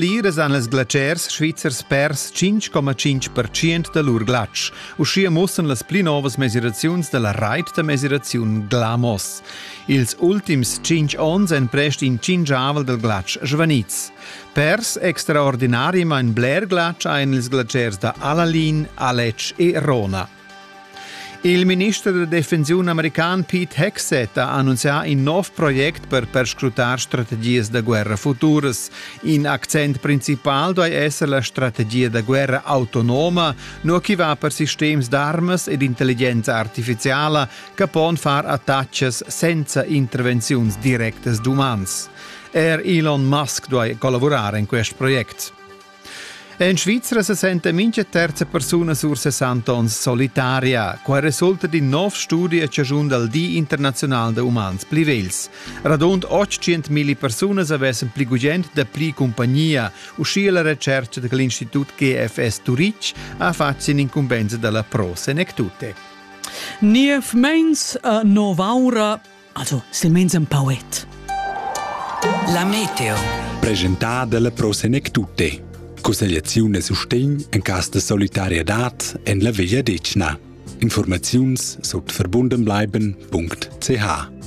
Pliras han las glatschers svizzers pers 5,5% da lur glatsch. Uschia muossan las pli novas mesiraziuns da la rait da mesiraziun Glamos. Ils ultims 5 onns èn prest in cingiavel dal glatsch svaniz. Pers extraordinari main bler glatsch ein ils glatschers da Alalin, Alec e Rona. Il minister da defensiun american Pete Hegseth ha annunzià in nov project per perscrutar strategias da guerra futuras. In accent principal duai esser la strategia da guerra autonoma, nur chi va per sistems d'armas ed intelligenza artificiala che pon far attacches senza intervenziuns directas d'umans. Er Elon Musk duai collavurar in quest project. En Svizra se senta mincha terza persuna sur 60 ons solitaria. Qua resulta d'in nov studi a ciagiun dal Di internazional da umans pli vels. Radund 800.000 persunas avessen pli gugent da pli compagnia, uscia la recerca da l'Institut GFS Turitg ha fatg in incumbensa dalla Pro Senectute. Niev meins a novaura Also, silmeins un pauet. La meteo. Presentà dalla Pro Senec Tutte. Consigliazione e sustegn en cas de solidarietad en la Veglia Decna. Informaziuns sut verbundenbleiben.ch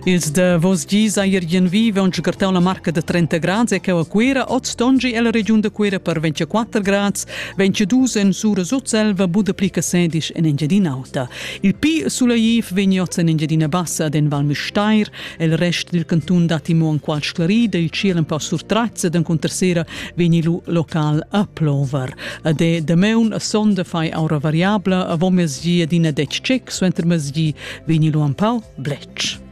Ils de vos gis a Irgien vive un cartau la marca de 30 grads e che a Cuira ot stongi e la regiun de Cuira per 24 grads, 22 en sura sut selva bude pli che sedisch en Engiadin'Auta. Il pi sulaiv vegn oz en Engiadina Bassa den Val Müstair, el rest dil cantun datti mo enqual sclarida, il ciel un po surtratz ed encunter sera vegni lu local a plover. A de dameun a sonda fai aura variabla, a vom mezgi adina dec cec, suenter mezgi vegni lu un pau blec.